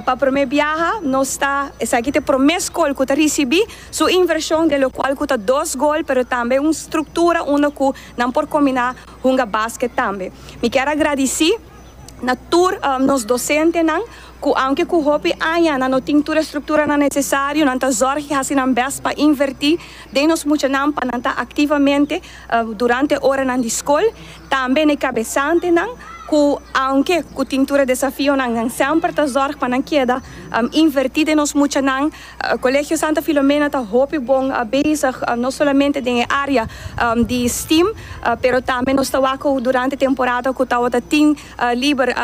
Pa prome biaha nos ta, esaki ta e prome skol ku ta risibi su invershon den lokual ku ta dos gol pero tambe un struktura unda ku nan por kombiná hunga basket tambe. Mi kier a gradisí na tur nos dosentenan ku aunke ku hopi aña nan no tin tur e strukturanan nesesario nan ta zòrg i hasi nan bèst pa invertí den nos muchanan pa nan ta aktivamente durante e oranan di skol. Tambe na e kabesantenan ku aunke ku tin tur e desafionan nan semper ta zòrg pa nan keda invertí den nos muchanan. Kolegio Santa Filomena ta hopi bon bezig no solamente den e área di stem pero tambe nos ta wak ku durante temporada ku tabata tin liber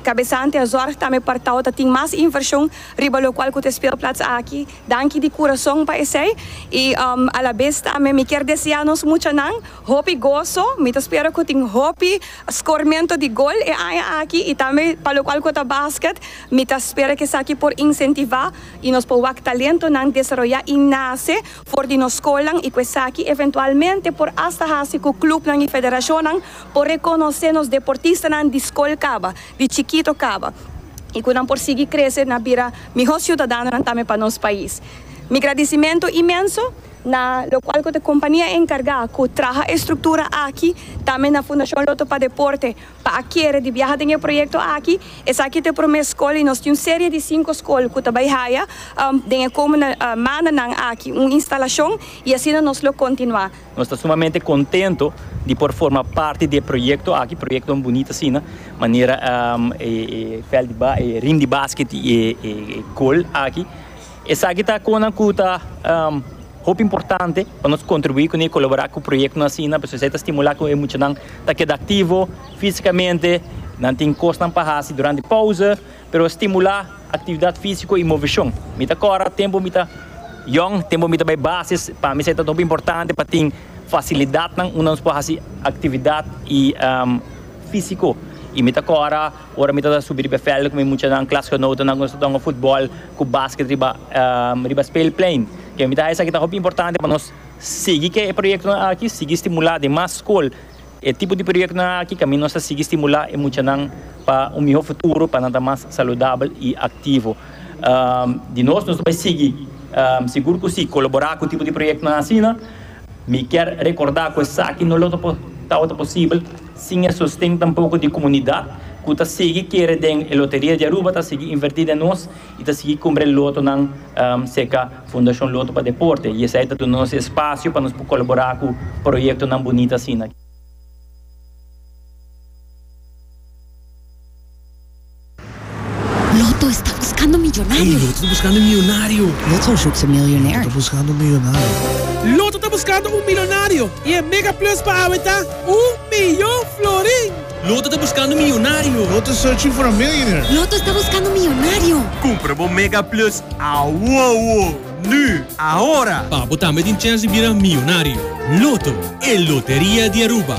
kabesante a zòrg tambe pa tabata tin mas invershon riba lokual ku ta e speelplats aki. Danki di kurason pa esei i alabes tambe mi kier deseá nos muchanan. Hopi goso, mi ta spera cu tin hopi scormento di gol e aña aki y tambe pa locual cu ta basket, mi ta spera cu esaki por incentiva y nos por wak talentonan desaroya y nace for di nos scolnan y cu esaki eventualmente por hasta haci cu clubnan y federacionnan por reconoce nos deportistanan di scol caba, di chikito caba y cu nan por sigui crece na bira miho ciudadanonan tambe pa nos pais. Mi gradicimento inmenso. na lokual ku ta kompania enkargá ku traha e struktura aki, tambe na Fundashon Lotto pa Deporte, pa a kere di biaha den e proyekto aki. Esaki ta e promé skol i nos tin un serie di sinku skol ku ta bai haya den e komende mandanan aki un instalashon i asina nos lo kontinuá. Nos ta sumamente kontento di por forma parti di e proyekto aki, proyektonan bunita asina manera e veld di e ring di basket i e gol aki. Esaki ta konan ku ta hopi importante pa nos kontribuí kuné, kolaborá ku proyektonan asina, pasobra esei ta stimulá ku e muchanan ta keda aktivo físikamente, nan tin kosnan pa hasi durante pouse, pero stimulá aktividat físiko i moveshon. Mi ta kòrda tempu mi ta yòn, tempu mi ta bai basis, pa mi esei ta hopi importante pa tin fasilidatnan unda nos por hasi aktividat físiko i mi ta kòrda. Ora mi ta ta subi riba e vèlden ku mi muchanan, klasgenotennan, ku nos ta ta hunga futbòl ku basket riba riba speelplein. Ke mi ta haña esaki ta hopi importante pa nos sigui ke e proyektonan aki, sigui stimulá den mas skol e tipo di proyektonan aki kaminda nos ta sigui stimulá e muchanan pa un mihó futuro, pa nan ta mas saludabel i aktivo. Di nos, nos ta bai sigui, sigur ku sí, kolaborá ku e tipo di proyektonan asina. Mi kier rekordá ku esaki no lo tabata posibel. sin e sosten tampoko di komunidat ku ta sigui kere den e Loteria di Aruba ta sigui invertí den nos i ta sigui kumpra e lotonan serka Fundashon Loto pa Deporte i esei ta duna nos e spasio pa nos por kolaborá ku proyektonan bunita asina. Loto sta buskando miyonario. Loto ta buskando un miyonario. Loto zoekt een miljonair. Loto ta buskando un miyonario. Loto ta buskando un milonario i e mega plus pa awe ta un miyon florin. Loto ta buskando un miyonario. Loto is searching for a millionaire. Loto sta buskando un miyonario. Kumpra bo mega plus awowo, nu, ahora! Pa bo tambe tin chèns di bira miyonario. Loto, e loteria di Aruba.